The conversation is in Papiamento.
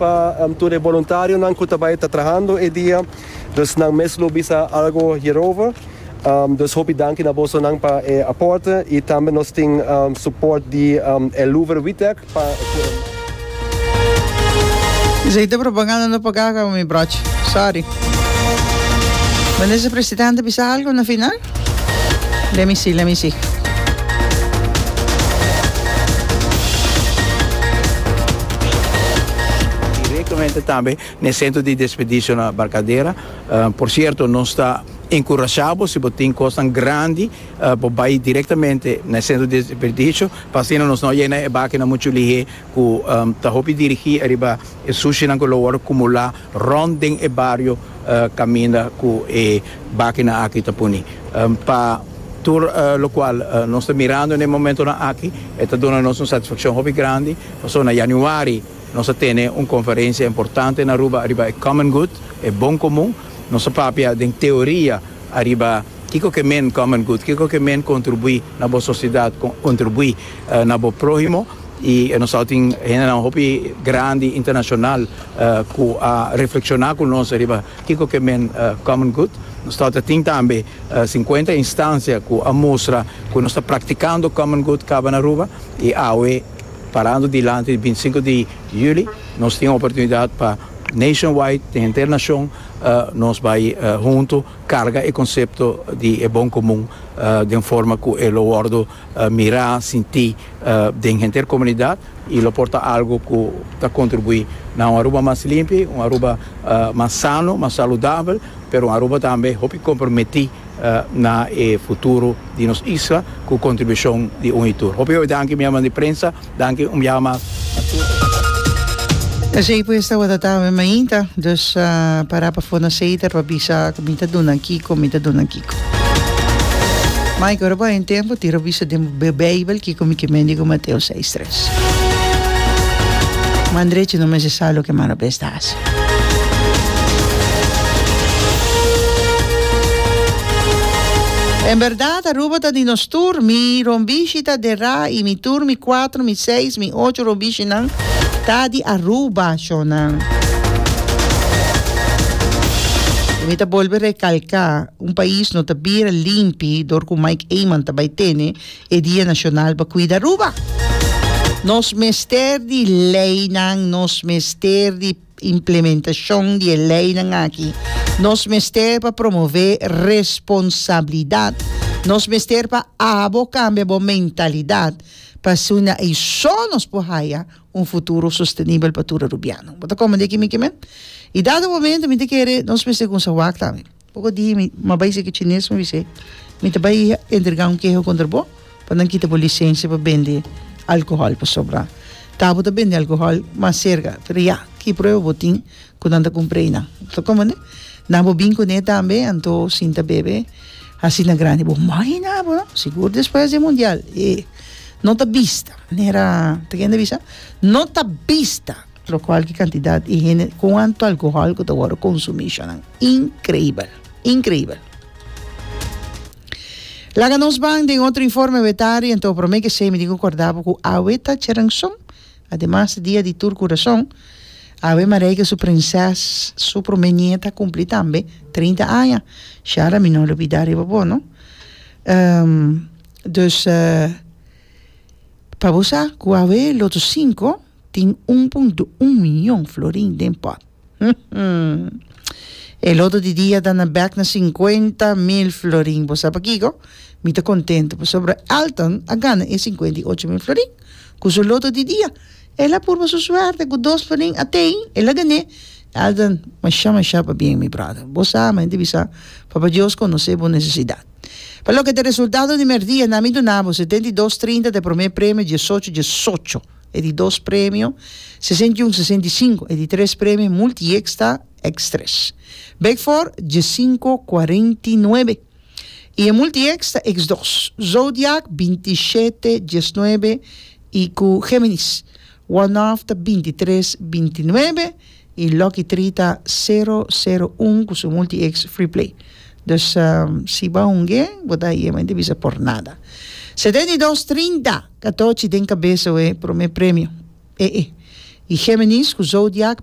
Pa tur e boluntarionan ku ta bai ta trahando e dia, dus nan mes lo bisa algu hierover. Dus hopi danki na bosonan pa e aporte i tambe nos tin suport di El Louvre Wittek pa. Esei ta propaganda no paga kaba mi brochi. Sorry. Minister Presidente bisa algo na final? Let me see, let me see. Directamente tambe na e centro di desperdicios na Barcadera. Por cierto nos ta encurasha bo si bo tin cosnan grandi bo bay directamente na e centro di desperdicio pa asina nos no yena e bakinan mucho lihé. ku ta hopi dirigí ariba e sushinan ku lo wòrdu kumulá rònt den e bario kaminda ku e bakinan aki ta puni. Pa tur lokual nos ta mirando n'e momentonan aki e ta duna nos un satisfakshon hopi grandi, pasobra na yanüari nos a tene un konferensia importante na Aruba ariba e common good, e bon komun. Nos a papia den teoria ariba kiko ke men common good, kiko ke men kontribuí na bo sosidat, kontribuí na bo próhimo. Y e nos ao tin hendenan hopi grandi internacional cu a reflexiona cu nos riba kico ke men common good. Nos ta tin tambe cincuenta instancia cu a mustra cu nos ta practicando common good caba na Aruba. Y awe parando dilanti di binti sinku di juli nos tin oportunidad pa nationwide, den henter nacion, nos bay hunto carga e concepto di e bon comun den forma cu e lo wordo mirá, sintí den henter komunidat i lo por ta algu ku ta kontribuí na un Aruba mas limpi, un Aruba mas sano, mas saludabel, pero un Aruba tambe hopi komprometí na e futuro di nos isla ku kontribushon di un i tur. Hopi hopi danki mi herman di prensa. Danki un biaha mas na Cusco. Esey pues tabata tambe mainta, dus para pa for na Seiter pa bisa cu mi ta duna kico, mi ta duna kico. Mike, ora bo haña tempo tira bisa den bo Bijbel kico mi ke mendigo Mateo seis tres. Mandrechi no mester sa loke malo bes ta. En berdad Aruba ta di nos tur, mi rombishi ta dera y mi tur, mi cuatro, mi seis, mi ocho rombishinan ta di Aruba shonan. Y mi ta bolbe recalca un pais no ta bira limpi dor cu Mike Eman ta bay tene. E dia nashonal pa kuida Aruba. Nos mester di leinan, nos mester di implementashon di e leinan aki, nos mester pa promové responsabilidat, nos mester pa abo kambia bo mentalidat pasobra ei so nos por haya un futuro sostenibel pa tur Arubiano. Bo ta komprendé kimin kimin? I dado momento mi ta kere nos mester kumsa wak tambe. Poko di mi ma bai seki chines mi bis'é mi ta bai entregá un keho kontra bo pa nan kita bo lisensia pa bende alkohòl pasobra ta bo ta bende alkohòl mas serka pero ya ki prueba bo tin ku nan ta kumpr'é nan ta komende na bo bin kuné tambe anto sin ta bebe asina grandi bo mai hina bo no sigur despues di e mundial e no ta bista manera ta kende bisa no ta bista. Lo cual ki cantidad y hende, cuanto alcohol cu ta worde consumi shanan. Increibel. Increibel. Laga nos ban den otro informe wetari en to prome kesey mi tin cu corda bo cu awe ta Cherenson. Ademas dia di tur curason. Awe Marijke su prinses su prome nieta a cumpli tambe trinta aña. Shara mi no lubida riba bo no. Um dus pa bo sa cu awe Loto Cinco. Tin un pun di un mion florin den pòt. E loto di dia ta na bèk na sinkuenta mil florin. Bo sa pakiko? Mi ta kontentu pasobra Elton a gana e sinkuenta i ocho mil florin ku su loto di dia. El a purba su suerte ku dos florin a tei el a gan'é. Elton, masha masha pabien mi bròder. Bo sa mi ta bisa Papa Dios konos'é bo nesesidat. Pa loke ta resultado di mèrdia nan mi duna bo setenta i dos trinta ta e promé premio diesocho diesocho. e di dos premio sesenta i un sesenta i sinku, e di tres premio multiex ta ex tres bek for diesinko kuarenta i nuebe i e multiex ta ex dos zodiak binti shete diesnuebe i ku geminis one off ta binti tres binti nuebe y Lucky Tree ta sero sero un cu su multi ex Free Play. Dus si bo a hungu'e bo ta ahí e mente bisa por nada. Setenta y dos trinta catochi den cabeza oe prome premio. E e. Y Geminis cu Zodiac